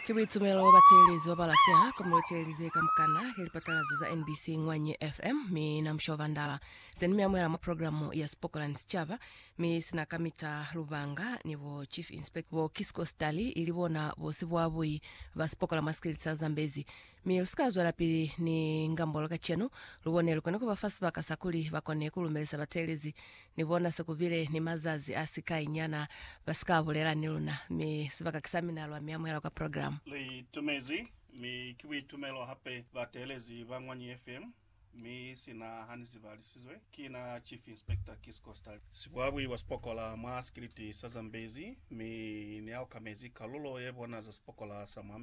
Ki buitumelo bateelezi babalateha komulo iteelize kamukana ki lipatalazo za NBC Ngwanyi FM. Mi na musha ubandala zeni mi amuhela mwa programu ya Sipokola ni Sicaba, mi sina kamita lubanga ni bo Chief Inspector bo Kisco Stali ili bona bosi bwa bui ba sipokola mwa sikiliti sa Zambezi. Mi lusika zwelapili ni ngambolo kacenu, lubone lukona kubafa sibaka sakuli bakone kulumelisa bateelezi nibona sekubile ni mazazi asikai nyana basika bulela ni luna. Mi sibaka kisamina lwa miamuhela kwa program. Li itumezi, mi ki buitumelo hape bateelezi ba Ngwanyi FM, mi sina hani zibalisizwe. Ki na Chief Inspector Keith Costa. Sibwabwi bwa sipokola mwa sikiliti sa Zambezi, mi ni aokamezi kalulo yebona za sipokola sa mwa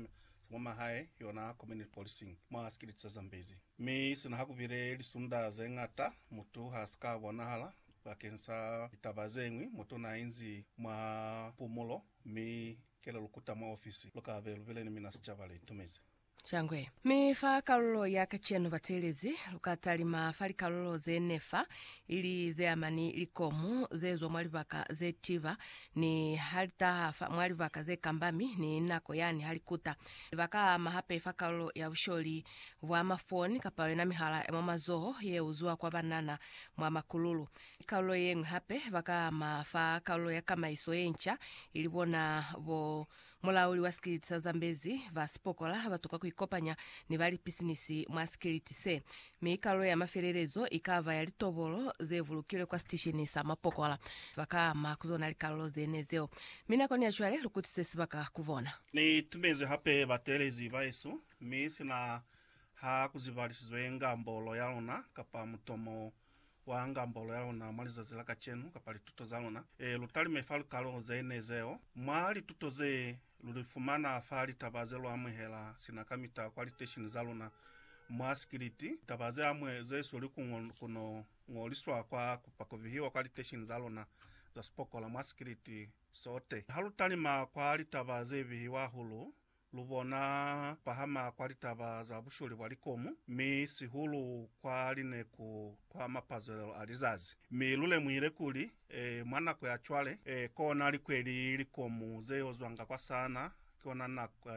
mwa mahae, yona community policing, mwa sikiliti sa Zambezi. Mi sina ha ku bile lisunda ze ñata mutu ha si ka bonahala bakeng sa litaba ze ñwi, mutu n'a inzi mwa pumulo, mi ke le lu kuta mwa ofisi, lu ka be lu bile ni mina sicaba le itumezi. Shangwe. Mi fa kalulo ya kacenu bateelezi, lu ka talima fa likalulo ze ne fa, ili ze ama ni likomu ze zwa mwa libaka ze tiba, Ni ha li taha fa mwa libaka ze kamba mi ni nako yani ha li kuta, ba ka ama hape fa kalulo ya busholi bwa mafoni kapa yona mihala ya mwa mazoho ye uzwa kwa banana mwa makululu. Kalulo ye ñwi hape ba ka ama fa kalulo ya kamaiso ye nca ili bona bo Mulauli wa sikiliti sa Zambezi, ba sipokola ha ba tuka ku ikopanya ni ba lipisinisi mwa sikiliti se, mi kalulo ya mafelelezo i ka ba ya litobolo ze bulukilwe kwa sitishini sa mapokola. Ba ka ama ku zona likalulo ze ne zeo, mi nakoni ya cwale lu kutise sibaka ku bona. Ni tumezi hape bateelezi baesu, mi sina ha ku zibalisizoenga mbolo ya luna kapa mutomo Wa ngambolo ya luna mwa lizazi la kacenu kapa lituto za luna, e, lu talime fa lukalo ze ne zeo. Mwa lituto ze, lu li fumana fa litaba ze lu amuhela sina kamita kwa litesheni za luna mwa sikiliti, litaba ze amwe ze sweli ku ngo, ku no ngoliswa kwa kupa ku vihiwa kwa litesheni za luna za sipokola mwa sikiliti sote. Ha lu talima kwa litaba ze vihiwa hahulu, Lu bona pahama kwa litaba za busholi bwa likomu, mi sihulu kwa lineku kwa mapazelelo a lizazi. Mi lu lemuhile kuli, mwa nako ya cwale, kona likweli likomu ze yo zwanga kwa sana, ki ona nako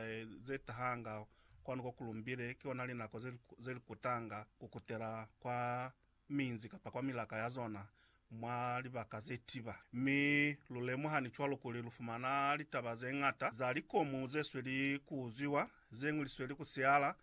ze tahanga kwanu ko ku lumbile, ki ona linako ze li kutanga ku kutela kwa minzi kapa kwa milaka ya zona mwa libaka ze tiba. Mi lu lemuha ni cwalo kuli lu fumana litaba ze ñata za likomu ze sweli ku uzwiwa, ze ñwi li sweli ku siala,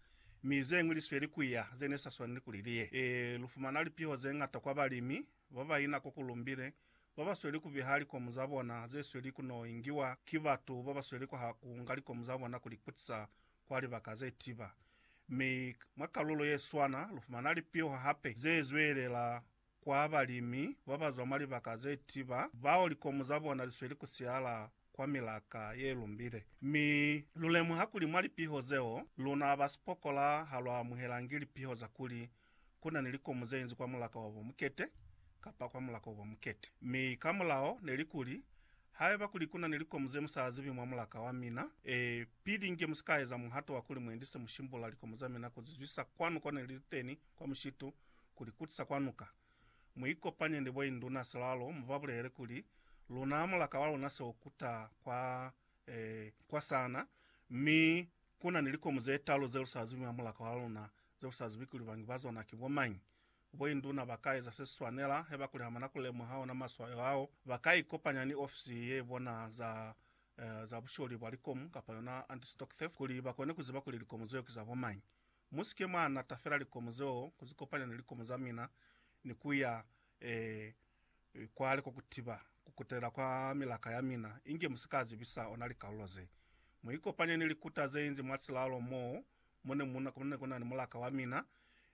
mi ze ñwi li sweli ku ya ze ne sa swaneli kuli li ye. Ee, lu fumana lipiho ze ñata kwa balimi ba ba ina kwa ku lumbile ba ba sweli ku biha likomu za bona ze sweli ku n'o ingiwa ki batu ba ba sweli ku ha ku nga likomu za bona ku li kutisa kwa libaka ze tiba, mi mwa kalulo ye swana lu fumana lipiho hape ze zwelela kwa balimi ba ba zwa mwa libaka ze tiba bao likomu za bona li sweli ku siala kwa milaka ye lumbile. Mi lu lemuha kuli mwa lipiho zeo, luna ba sipokola ha lwa amuhelangi lipiho za kuli ku na ni likomu ze inzwi kwa mulaka wa bo mukete kapa kwa mulaka wa bo mukete. Mi ka mulao ne li kuli, Haiba kuli ku na ni likomu ze mu sa zibi mwa mulaka wa mina, e, pili nge mu si ka eza muhato wa kuli mu endise mu shimbula likomu za mina ku zi zwisa kwanu ko ne li li teni kwa mushitu, ku li kutisa kwa nuka. Mu ikopanye ni bo induna silalo, mu ba bulelele kuli, Luna mulaka wa luna se u kuta kwa, e, kwa sana, mi Ku na ni likomu ze talu ze lu sa zibi mamulako a luna, ze lu sa zibi kuli bangi ba zona ki bo mañi. Boinduna ba ka eza se si swanela, haiba kuli ha ba na ku lemuha ona maswayo ao, ba ka ikopanya ni ofisi ye bona za, eh, za busholi bwa likomu, kapa yona Anti-Stock Theft, kuli ba kone ku ziba kuli likomu zeo ki za bo mañi. Musike mwa natafela likomo zeo ku zi kopanya ni likomo za mina ni ku ya e, e, kwale kwa ku tiba ku kutelela kwa milaka ya mina, inge mu si ka zibisa ona likalulo ze. Mu ikopanye ni likuta ze inzi mwa silalo mo mu ne mu na, ku ne ku na ni mulaka wa mina,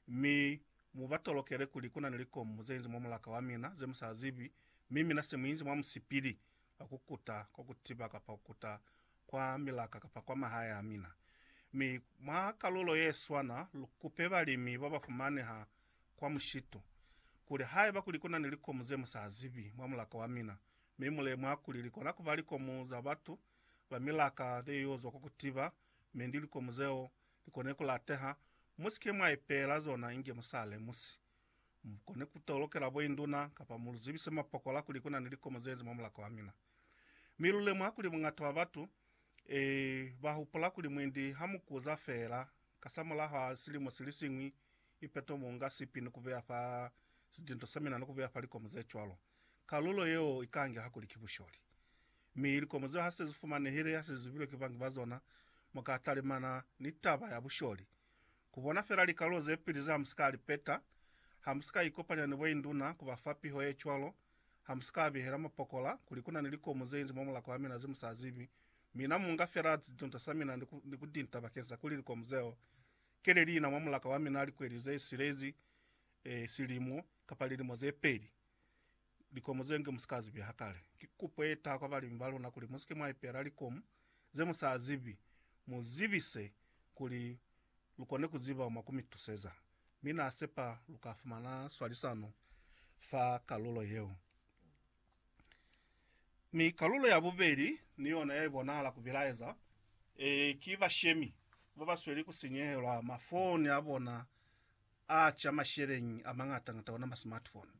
mi mu ba tolokele kuli ku na ni likomo ze inzi mwa mulaka wa mina, ze mu sa zibi, mi mina se mu inzi mwa musipili ba kukuta kwa kutiba kapa kukuta kwa milaka kapa kwa mahae a mina. Mi mwa kalulo ye swana, lu kupe balimi ba ba fumaneha kwa mushitu, kuli haiba kuli ku na ni likomu ze mu sa zibi mwa mulaka wa mina, mi mu lemuha kuli li kona ku ba likomu za batu ba milaka ze y'o zwa kwa kutiba, mi ndi likomu zeo li kone ku lateha, mu si ke mwa ipeela zona inge mu sa lemusi. Mu kone ku tolokela boinduna kapa mu lu zibise mapokola kuli ku na ni likomo ze nzi mwa mulaka wa mina. Mi lu lemuha kuli buñata bwa batu, ee, ba hupula kuli mwendi ha mu kuza feela kasamulaho a silimo si li siñwi, ipeto mu nga sipi ni ku beya fa sidinto sa mina ni ku beya fa likomo ze cwalo. Kalulo yeo i ka ngeha kuli ki busholi. Mi likomo zeo ha se zi fumanehile, ha se zi zibilwe ki bangi ba zona, mu ka talimana ni taba ya busholi. Kubona fela likalolo zepili za Hamusika Alipeta, Hamusika Ikopanya ni Boinduna kuba fa piho yecwalo, Hamusika Abihela Mapokola kuli kunani likomu zeinzi mwa mulaka wamina zemusazibi, mina munga fela zitunta samina ni kutinta bakeng sa kuli likomu zeo kele liina mwa mulaka wamina likweli zesilezi, silimu, kapa lilimo zepeli. Likomu ze nge mu si ka zibi ha kale. Ki kupo ye taha kwa balimi ba luna kuli mu si ke mwa ipela likomu ze mu sa zibi, mu zibise kuli lu kone ku ziba mwa ku mi tuseza. Mi na sepa lu ka fumana swalisano fa kalulo yeo. Mi kalulo ya bubeli ni yona ya ibonahala ku bilaeza, ki bashemi ba ba sweli ku sinyehelwa mafoni a bona a ca masheleñi a mañata-ñata ona masmartphone.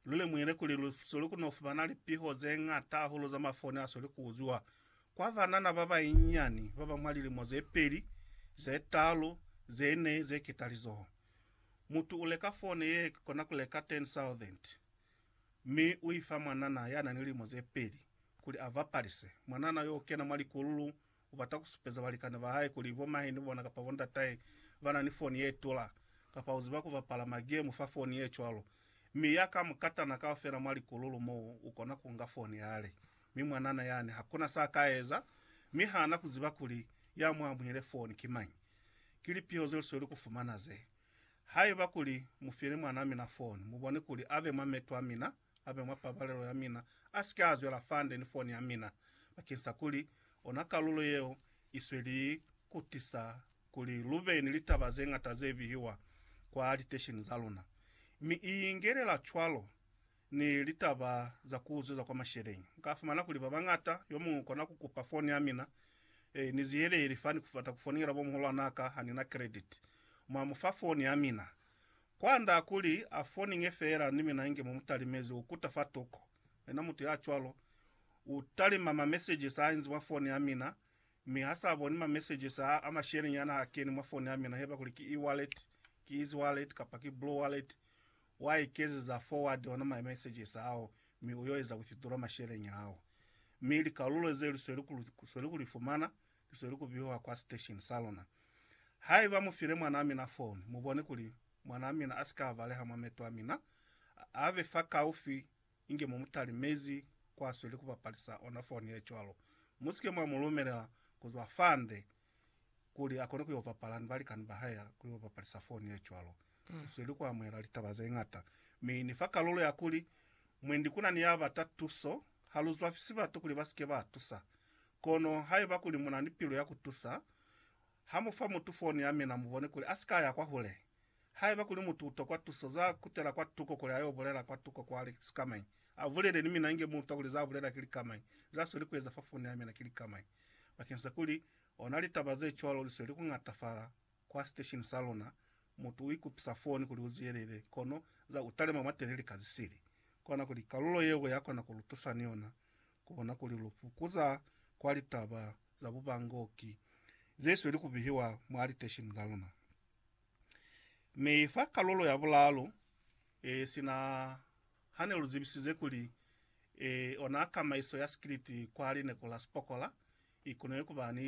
Lu lemuhile kuli lu soli ku no fumana lipiho ze ñata hahulu za mafoni a soli ku uzwiwa kwa banana ba banyinyani ba ba mwa lilimo ze peli, ze talu, ze ne, ze ketalizoho. Mutu u leka fone ye kona ku leka 10,000, mi u i fa mwanana ya na ni lilimo ze peli kuli a bapalise. Mwanana yo u kena mwa likululu U bata ku supeza balikani ba hae kuli bo mahe ni bona kapa bo ndatahe ba na ni foni ye tula, kapa u ziba ku bapala magemu fa foni ye cwalo. Mi ya ka mukatana kaufela mwa likululu mo u kona ku nga foni yale. Mi mwanana yani ha kuna sa ka eza, mi ha na ku ziba kuli ya mu amuhile foni ki mañi. Ki lipiho ze lu sweli ku fumana ze. Haiba kuli mu file mwan'a mina foni, mu bone kuli a be mwa meto a mina. abe mwa pabalelo ya mina, asike azwela fande ni foni ya mina, bakeng sa kuli ona kalulo yeo isweli kutisa kuli lube ni litaba zeñata ze bihiwa kwa litesheni za luna, mi iingelela cwalo ni litaba za kuzweza kwa masheleñi. Nka fumana kuli babañata, yomuñwi ukona kukupa foni ya mina, e, ni ziyeleli fani kubata kufonela bo muhulwanaka hanina credit, mwa mufa foni ya mina. Kwand'a kuli a foninge feela ni mina inge mu mu talimezi ku kuta fa toko. Yena mutu ya cwalo u talima ma messages a inzi mwa foni ya mina, mi ha s'a boni ma messages a a mashelinyana a keni mwa foni ya mina, heba kuli ki e-wallet, ki easy wallet kapa ki blue wallet, wa ikezeza forward ona ma messages ao, mi u yo eza withdraw masheleni ao. Mi likalulo ze lu sweli ku li fumana, Ki zweli ku biwa kwa sitesheni sa luna. Haiba mu file mwanaa mina foni, mu bone kuli mwanaa mina a si ka baleha mwa meto a mina, a be fakaufi inge mu mu talimezi kwa sweli ku bapalisa ona foni ye cwalo. Mu si ke mwa mu lumelela ku zwa fande kuli a kone ku yo bapala ni balikani ba hae kuli ba bapalisa foni ye cwalo. Ni sweli ku amuhela litaba ze ñata, mi ni fa kalulo ya kuli Mwendi ku na ni ya bata tuso. Ha lu zwafisi batu kuli ba si ke ba tusa. Kono haiba kuli mu na ni pilu ya ku tusa, ha mu fa mutu foni ya mina mu bone kuli a si ka ya kwahule. Haiba kuli mutu u tokwa tuso, za kutela kwa tuko kuli a yo bulela kwa tuko kwa likamai. A bulele ni mina inge mu utwa kuli za bulela ki likamai. Za sweli ku eza fa foni ya mina ki likamai. Bakeng sa kuli ona litaba ze cwalo li sweli ku ñatafala, Kwa station sa luna, mutu u ikupisa foni kuli u zwiyelele, kono za u talima mwa telele ka zisili. Kona kuli kalulo yeo ya kona ku lu tusa ni yona ku bona kuli lu fukuza kwa litaba za bubangoki ze sweli ku bihiwa mwa litesheni za luna. Mi fa kalulo ya bulaalu, e, sina ha ne lu zibisize kuli, e, ona kamaiso ya sikiliti kwa lineku la Sipokola i koneñi ku ba ni